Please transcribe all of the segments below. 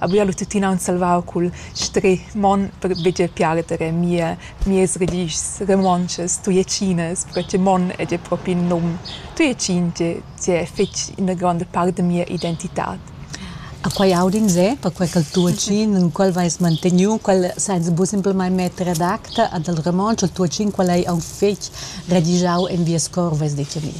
A buia lu tuttina aunc salvau cul stri mon per buca piarder mie mies religius romontschas tujetschinas, perche che mon ei gia propi in num tujetschin che che è fetg ina gronda part da mia identitad. A quei audin jeu, perquei ch'el tuatschin, en quel veis manteniu quel senza buca simplamain metter ad acta ad el romontsch, il tuatschin quel ei aunc fetg radigiau en vies cor, veis detg a mi.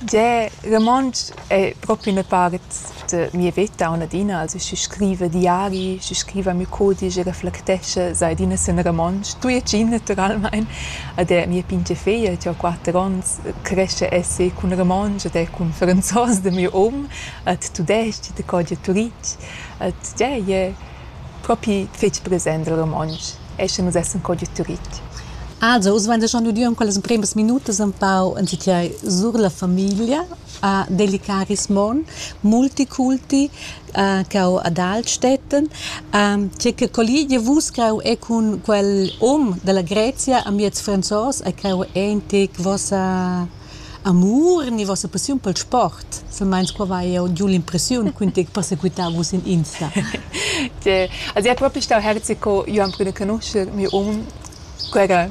Gie, romontsch è propi ina part de mia veta on adina, also schi scriva diari, schi scriva miu codice, reflectesce, sai adina sen romontsch, tui e cin naturalmein, ed è mia pingia feia, che ho quatter onns, cresce esse cun romontsch ed è cun franzos de miu um, ed tudesc, de codia turitg, ed yeah, je propi fetg present il romontsch, esce nus essen codia turitg. Also, oz vegn schon udiu in quellas empremas minutas empau entitiai sur la famiglia ha delicaris mon, multiculti, ch'eu ad alch stettan. tge che colligia vus creu è cun quel hom da la Grezia amiez franzos e creu è in tec vossa amur ni vossa passiun pel sport. Silmeins qua vai eu giu l'impressiun ch'ün tec persequità vus in Insta. Tge. Az è propi stau herzi co io am prüna canuscher miu hom, quel era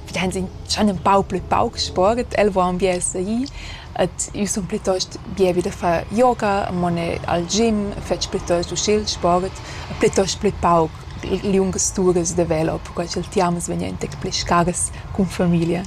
Wir haben sind schon ein paar blöd Bauch gesport, el waren wir sei et io sun plitost bia vid a far yoga, a mone al gym, fetsch plitost uschè sport, e plitost plü pauc liungas turas da velo, perquai ch'el tiamas vegn entec pli scaras cun familia.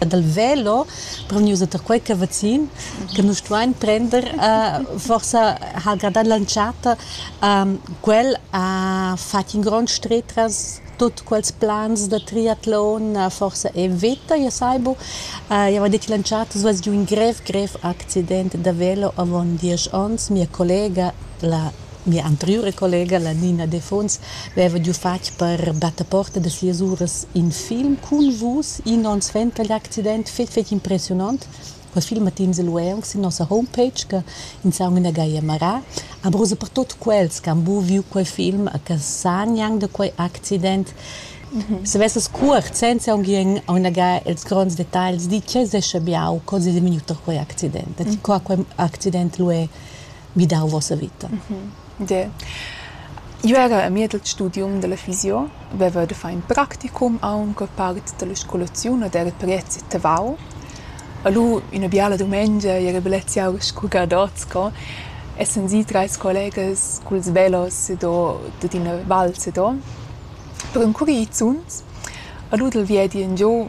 E dal velo reunius tar quei che vacin che nus stuein prender uh, forsa ha gradat l'entschatta um, quel ha fatg in grond stretras tut quels plans da triatlon uh, forsa è vita, io saibu. Uh, io avevo detto in lanciata, es giù un grev, grev accidente da velo avon diesch onns. Mia collega, la mia anteriore collega, la Nina De Fons, aveva giù fatg per battaporta de sias uras in film con vus, in onns vent, gli accident fetg, fetg impressionant. Quels filmatins lu ei aunc sin nossa homepage che ins ha aunc ina gaglia marà. Ampurosa per tut quels che han buc viu quei film e che san gnanc da quei accident. Se vesses cuort, senza aunc ien aunagà ils gronds detagls, di tgei sescha biau co sesenvignut da quei accident. Da ti co quei accident lu ei vidau vossa vita. De. Jeu era a mied il studium della fisio, veva de far in practicum aunc part della scolaziun ed era priezi tavau. E lu ina biala dumengia era bellezia aur sco gadots sco essan si treis collegas culs velos ed o dad ina val sedo per encurir zuns. E lu dal viedi engiu